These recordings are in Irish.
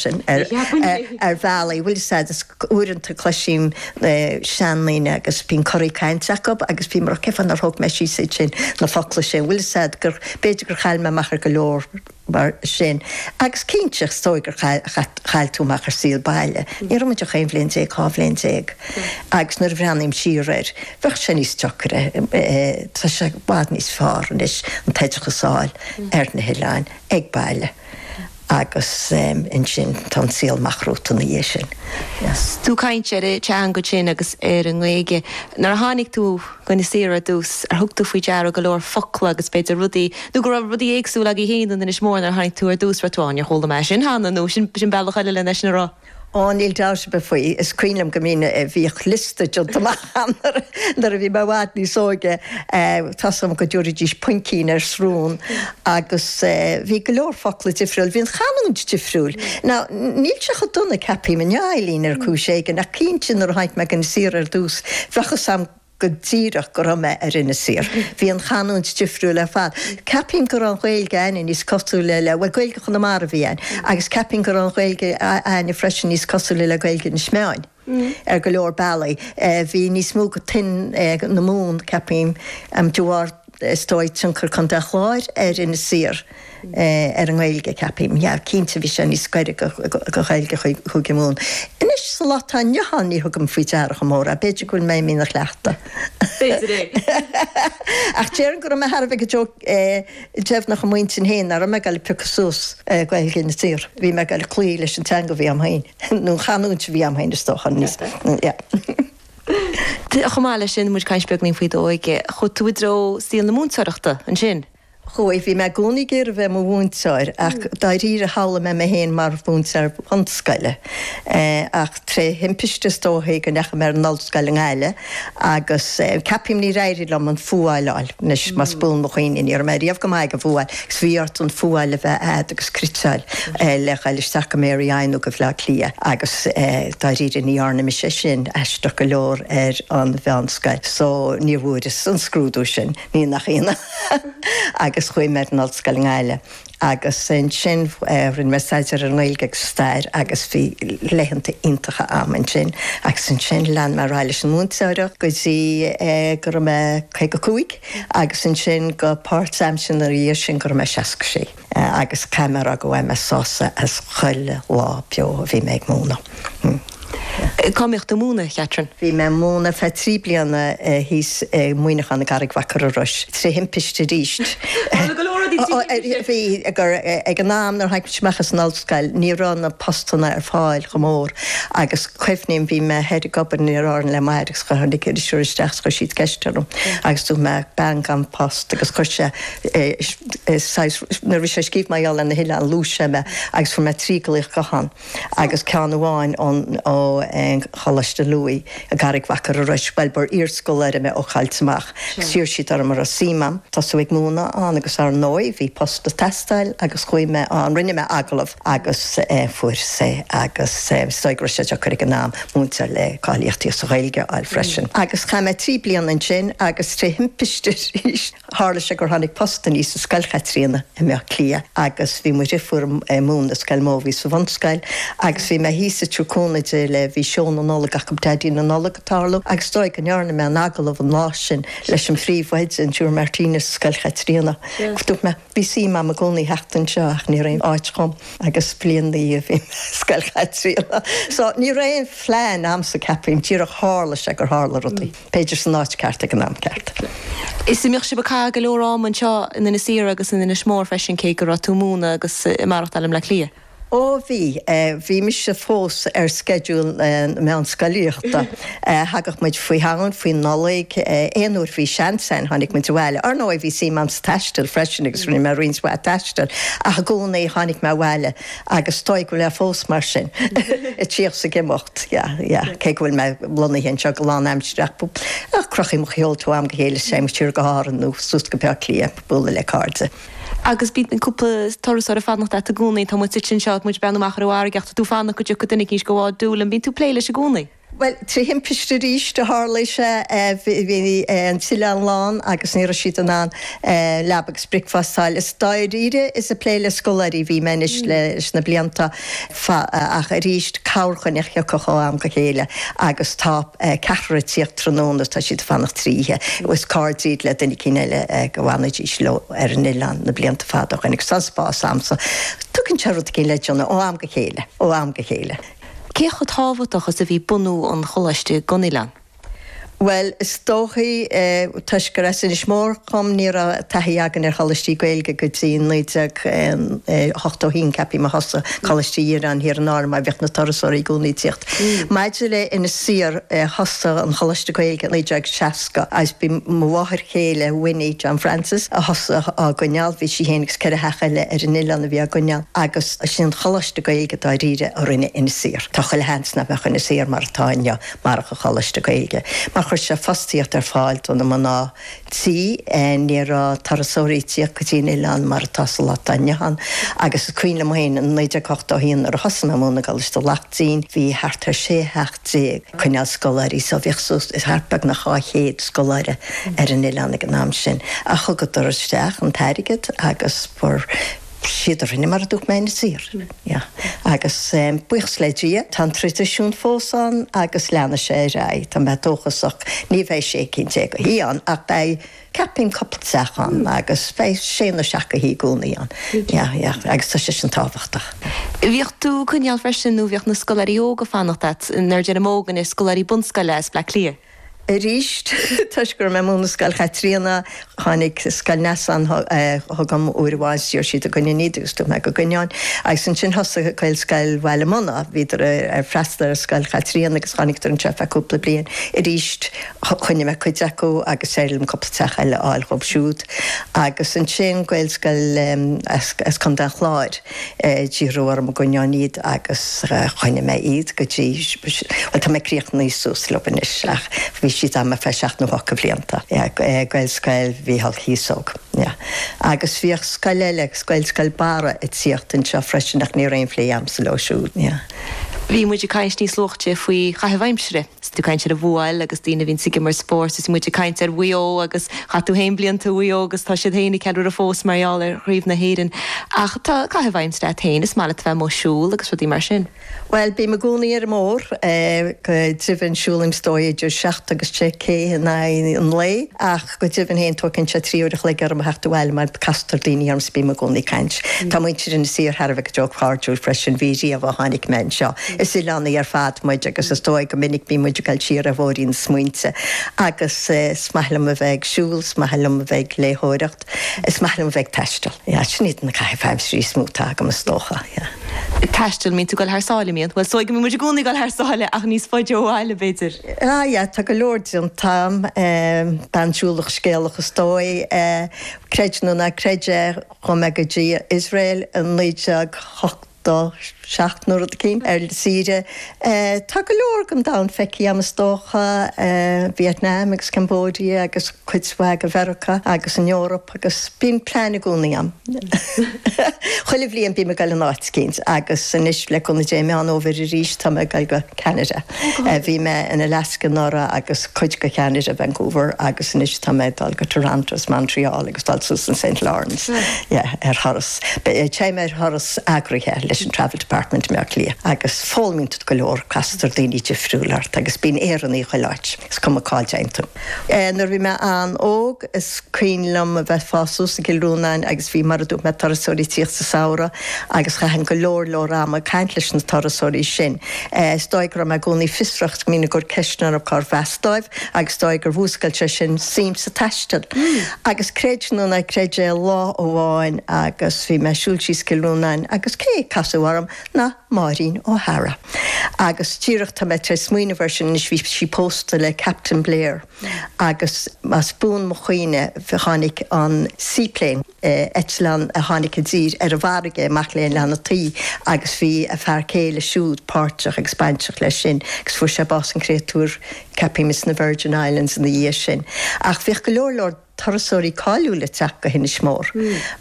sin ar bhealaí, bhfuil 'fhios a'd, is uaireanta cloisím seandaoine agus bíonn coraí cainte acu agus bím ag rá cé fáth nár thóg mé síos iad sin, na focla sin, bhfuil 'fhios a'd, gur, b'fhéidir gur chaill mé amach ar go leor mar sin. Agus cinnte, is dóigh gur chaill tú amach ar saol baile. Ní raibh muid ach aon bhliain déag, dhá bhliain déag agus nuair a bhreathnaím siar air, bheadh sé níos deocaire, tá sé i bhfad níos fearr anois an t-oideachas a fháil ar na hoileáin, ag baile. Agus ansin tá an saol amach romhat ina dhiaidh sin. Yes. Tú ag caint ar an teanga sin agus ar an nGaeilge. Nuair a tháinig tú go hInis Oírr ar dtús, ar thug tú faoi deara go leor focla agus b'fhéidir rudaí, nó go raibh rudaí éagsúil agaibh féin in Inis Mór nuair a tháinig tú ar dtús, an raibh tú, á níor chuala mé sin cheana nó sin sin bealach eile lena rá? Ó, níl dabht ar bith faoi, is cuimhin liom go mbíonn, bhíodh liosta déanta amach a'm nuair a bhí mé i bhfad níos óige, tá's a'm go dtabhraídís puimcín ar srón agus bhí go leor focla difriúil, bhí an chanúint difriúil. Now, níl sé chomh dona, ceapaím, inniu, Eileen, ar chúis éigin, ach cinnte nuair a tháinig mé go hInis Oírr ar dtús, bheadh 'fhios a'm, go díreach go raibh mé ar Inis Oírr. Bhí an chanúint difriúil ar fad. Ceapaim go raibh an Ghaeilge a'inne níos cosúile le, bhuel Gaeilge Chonamara a bhí ann, agus ceapaim go raibh an Ghaeilge a'inne freisin níos cosúile le Gaeilge Inis Meáin ar go leor bealaí. Bhí níos mó de thuin na Mumhan, ceapaim, de bharr. Is dóigh tionchar Chontae an Chláir ar Inis Oírr ar an nGaeilge, ceapaim. Yeah, cinnte, bhí sé níos gaire do Ghaeilge Chúige Mumhan. Anois, sa lá atá inniu ann, ní thugaim faoi deara chomh mór é. B'fhéidir go bhfuil mé imithe ina chleachtadh. B'fhéidir é. Ach déarfainn go raibh mé thar a bheith deimhneach i m'intinn féin nach raibh mé ag dul ag piocadh suas Gaeilge Inis Oírr. Bhí mé ag dul ag cloí leis an teanga a bhí a'm féin, nó an chanúint a bhí a'm féin, is dócha, níos, yeah. Chomh maith leis sin, muid ag caint beagainín faoi d'óige. Chuaigh tú i dtreo saol na múinteoireachta, ansin? Chuaigh. Bhí mé i gcónaí ag iarraidh bheith i mo mhúinteoir, ach dáiríre shamhlaigh mé mé féin mar mhúinteoir bunscoile. Ach tré thimpiste, is dóiche, go ndeachaigh mé ar an ollscoil i nGaillimh, agus ceapaim níor éirigh liom an fuáil a fháil. Anois, más buan mo chuimhne, ní raibh mé riamh go maith ag an bhfuáil. Is bhí ort an fuáil a bheith a'd agus criteáil le ghail isteach go Mary I nó go Bleá Cliath agus dáiríre ní dhearna mise sin aisteach go leor ar an mheánscoil so ní bhfuaireas an scrúdú sin ní nach ionadh agus chuaigh mé ar an ollscoil i nGaillimh agus ansin rinne mé staidéar ar an nGaeilge agus stair agus bhí laethanta iontacha a'm ansin agus ansin lean mé ar aghaidh leis an múinteoireacht go dtí go raibh mé caoga cúig. Agus ansin go páirtaimseartha ina dhiaidh sin go raibh mé 66. Agus caithfidh mé a rá gur bhain mé sásamh as chuile lá beo a bhí mé ag múineadh. Cá mbíodh tú ag múineadh, a Chatherine? Bhí mé ag múineadh ar feadh trí bliana thíos i Muineachán i gCarraig Mhachaire Rois, trí thimpiste arís. Tharla go leor rudaí trí thimpiste. Bhí, ag an am nuair a tháinig muid amach as an. scoil. Ní raibh na postanna ar fáil chomh mór agus cuimhním, bhí mé thoir ag obair in Iaráirne le m'athair agus tháinig iriseoir isteach agus chuir siad ceist orm agus dúirt mé bean gan post agus chuir sé saghas, nuair a bhí sé ag scríobh mar gheall ar na hoileáin luaigh sé mé agus fuair mé trí glaoch gutháin agus ceann amháin ón Choláiste Louis. I gCarraig Mhachaire Rois bhuel ba iarscoláire mé ó Choillte Mach agus d'iarr siad orm an raibh suim a'm tosú ag múineadh ann agus ár ndóigh bhí post ag teastáil agus chuaigh mé ann rinne mé agallamh agus eh fuaireas é agus eh is dóigh go raibh sé deacair ag an am múinteoir le cáilíochtaí sa Ghaeilge a fháil freisin agus chaith mé trí bliana ansin agus tré thimpiste arís Tharla sé gur tháinig post aníos i Scoil Chaitríona i mBleá Cliath agus bhí mo dheirfiúr ag múineadh i Scoil Mobhí sa bhunscoil agus bhí mé thíos ag tabhairt cúnamh di le Bhí Seó na Nollag acu, Daidí na Nollag, ag tarlú agus is dóigh go ndearna mé an agallamh an lá sin leis an phríomhoide, an tSiúr Martinez i Scoil Chaitríona. Dúirt mé, bhí suim agam i gcónaí theacht anseo ach ní raibh aon áit acu dhom agus bliain ina dhiaidh bhí mé i Scoil Chaitríona. So, ní raibh aon phlean a'msa, ceapaim, díreach tharla sé gur tharla rudaí. b'fhéidir san áit ceart ag an am ceart. Is an mbíodh sibh ag caitheamh go leor ama anseo in Inis Oírr agus in Inis Mór freisin cé go raibh tú ag múineadh agus ag maireachtáil i mBleá Cliath. Ó bhí, bhí mise fós ar sceideal na meánscolaíochta. Thagadh muid faoi Shamhain, faoi Nollaig, aon uair bhí seans ann tháinig muid abhaile. Ar ndóigh bhí suim a'm sa taisteal freisin agus rinne mé roinnt mhaith taisteal ach i gcónaí tháinig mé abhaile. Agus is dóigh go bhfuil mé fós mar sin, ag tíocht 's ag imeacht, yeah, yeah, cé go bhfuil mé lonnaithe anseo go lánaimsireach, ach crochaim mo sheolta ó am go chéile 's téim siar go hÁrainn nó suas go Bleá Cliath ag bualadh le cairde. Agus bíonn cúpla turasóir ag fanacht leat i gcónaí, tá muid suite anseo is muid ag breathnú amach ar an bhfarraige ach tá tú ag fanacht go dtiocfaidh duine éigin 's go bhfáil dúil ann, bíonn tú ag plé leis i gcónaí? Bhuel, trí thimpiste arís a tharlaigh sé, bhí an t-oileán lán agus ní raibh siad in ann leaba agus bricfeasta a fháil. Is dáiríre is ag plé le scoláirí a bhí mé anois leis na blianta fada ach arís corrdhuine a thiocfadh ó am go chéile agus tá ceathrar ag tíocht tráthnóna, tá siad ag fanacht trí oíche, is cairde iad le duine eicínt eile a bhfanaidís leo ar an oileán na blianta fada ó shin agus tá an spás agamsa. Tugann sé rud éigin le déanamh ó am go chéile, ó am go chéile. Cé chomh tábhachtach is a bhí bunú an choláiste don oileán? Bhuel, is dóichí, toisc gur as Inis Mór dhom, ní raibh taithí againn ar choláistí Gaeilge go dtí 1981, ceapfaidh mé. Thosaigh Coláiste Uí Dhireáin thiar in Árainn mar bhíodh na turasóirí i gcónaí ag tíocht. Maidir le Inis Oírr, thosaigh an Choláiste Gaeilge i 1960 agus b'í mo mháthair chéile, Winnie, John Francis, a thosaigh á gcoinneáil. Bhí sí féin agus ceithre theach eile ar an oileán a bhí á gcoinneáil agus. Is é an coláiste Gaeilge dáiríre a rinne Inis Oírr. Tá chuile sheans nach mbeadh Inis Oírr mar atá inniu marach an coláiste Gaeilge, mar chuir sé fostaíocht ar fáil do na mná tí, ní raibh turasóirí ag tíocht go dtí an oileán mar atá sa lá atá inniu ann, agus is cuimhin liom féin in 1981 nuair a thosaigh mé ag múineadh i gColáiste Laichtín, bhí thart ar 16 theach ag coinneáil scoláirí, so bhíodh suas le thart beagnach 200 scoláire ar an oileán ag an am sin, agus thugadar isteach an t-airgead agus fuair. Siad a rinne mar a dúirt mé Inis Oírr. Agus buíochas le Dia, tá an traidisiún fós ann agus leanfaidh sé ar aghaidh, tá mé dóchasach. Ní bheidh sé cinn déag a thí ann ach beidh, ceapaim, cupla teach ann agus beidh sé nó seacht gcinn a thí i gcónaí ann. Agus tá sé sin tábhachtach. Bhíodh tú ag coinneáil freisin, nó bhíodh na scoláirí óga ag fanacht leat, nuair a deirim óg anois, scoláirí bunscoile as Bleá Cliath. Arís, toisc go raibh mé ag múineadh i Scoil Chaitríona, tháinig Scoil Neasáin chugam uair amháin 's d'iarr siad an gcoinneoinn iad, agus dúirt mé go gcoinneoinn. Agus ansin thosaigh Gaelscoil Bhaile Munna, bhíodar ag freastal ar Scoil Chaitríona agus tháinigdar anseo ar feadh cúpla bliain. Arís, choinnigh mé cuid acu agus d'éirigh liom cúpla teach eile a fháil dhóibh siúd. Agus ansin Gaelscoil as Contae an Chláir. D'iarradar orm an gcoinneoinn iad agus choinnigh mé iad go dtí, bhuel tá mé críochnaithe suas leo anois ach bhí siad agam ar feadh seacht nó ocht de bhlianta. Gaelscoil Mhíchíl Cíosóg. Agus bhíodh scoil eile, Gaelscoil Barra, ag tíocht anseo freisin ach ní raibh aon phlé agamsa leo siúd. Bhí muid ag caint níos luaite faoi chaitheamh aimsire. 'S tú ag caint ar an bpeil agus daoine a bhíonn ag imirt spóirt, is muid ag caint ar Mhaigh Eo agus chaith tú fhéin blianta i Maigh Eo agus tá siad fhéin ag ceiliúradh fós mar gheall ar Chraobh na hÉireann. Ach tá caitheamh aimsire agat fhéin, is maith leat a bheith amuigh ag siúl agus rudaí mar sin. Bhuel, bím i gcónaí ar an mbóthar go deimhin, siúlaim, is dóigh, idir seacht agus deich cé in aghaidh an lae, ach. Go deimhin féin, tógann sé trí uair a chloig orm a theacht abhaile mar castar daoine orm 's bím i gcónaí ag caint. Tá muintir Inis Oírr thar a bheith go deo cairdiúil freisin, bhí riamh ó tháinig mé anseo. Is oileánaigh ar fad muid agus is dóigh go minic bíonn muid ag dul siar ar bhóithrín na smaointe. Agus 's maith liom a bheith ag siúl, 's maith liom a bheith ag léitheoireacht, 's maith liom a bheith ag taisteal. Yeah, sin iad na caithimh aimsire is mó atá agam is dócha. Yeah. Ag taisteal, mbíonn tú ag dul thar sáile, mbíonn? Bhuel, 's dóigh go mbíonn muid i gcónaí ag dul thar sáile ach níos faide ó bhaile, b'fhéidir. Ah yeah, tá go leor déanta agam, bean siúlach scéalach is dóigh. Creid nó ná creid é, chuaigh mé go dtí Iosrael i naoi déag hochtó seacht nó rud eicín, ar saoire. Tá go leor den domhan feicthe agam is dócha, Vietnam agus Cambodia agus cuid mhaith de Mheiriceá agus an Eoraip agus bíonn plean i gcónaí agam. Chuile bhliain bím ag goil in áit eicínt agus anois le cúnamh Dé i Meán Fhómhair arís tá mé ag goil go Ceanada. Bhí mé in Alaska anuraidh agus cuid de Cheanada, Vancouver, agus anois tá mé ag dul go Toronto is Montreal agus dul suas an Saint Lawrence ar thuras. Téim ar thuras eagraithe leis an Travel Department i mBleá Cliath agus foghlaimíonn tú go leor, castar daoine difriúla ort agus bíonn Éireannaigh chuile áit, is cuma cá dtéann tú. Nuair a bhí mé an-óg, is cuimhin liom a bheith ag fás suas i gCill Rónáin agus bhí, mar a dúirt mé, turasóirí ag tíocht sa samhradh agus chaithinn go leor leor ama ag caint leis na turasóirí sin. Is dóigh go raibh mé i gcónaí fiosrach is go mbínn ag cur ceisteanna ar cárb as dóibh agus is dóigh gur mhúscail sé sin suim sa taisteal. Agus creid nó ná creid é lá amháin agus bhí mé ag siúl síos Cill Rónáin agus cé a casadh orm ná Maureen O'Hara. Agus díreach tá mé tar éis smaoineamh air sin anois bhí sí pósta le Captain Blair agus más buan mo chuimhne tháinig an seaplane. eitleán a tháinig i dtír ar an bhfarraige, amach le hOileán na Tuí, agus bhí a fear céile siúd páirteach agus bainteach leis sin, agus fuair sé bás, an créatúr, ceapaim, ins na Virgin Islands ina dhiaidh sin. Ach bhíodh go leor leor turasóirí cáiliúla ag teacht go hInis Mór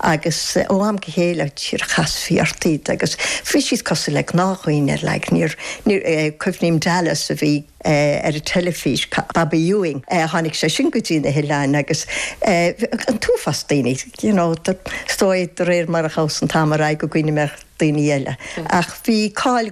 agus ó am go chéile chasfaí ort iad agus bhí siad cosúil le gnáthdhaoine ar aghaidh. Níor, níor, cuimhním Dallas a bhí. ar an teilifís, Bobby Ewing, tháinig sé sin go dtí na hoileáin agus an t-uafás daoine, you know, is dóigh de réir mar a ghabhas an t-am ar aghaidh go gcuimhneoidh mé ar dhaoine eile ach bhí cáil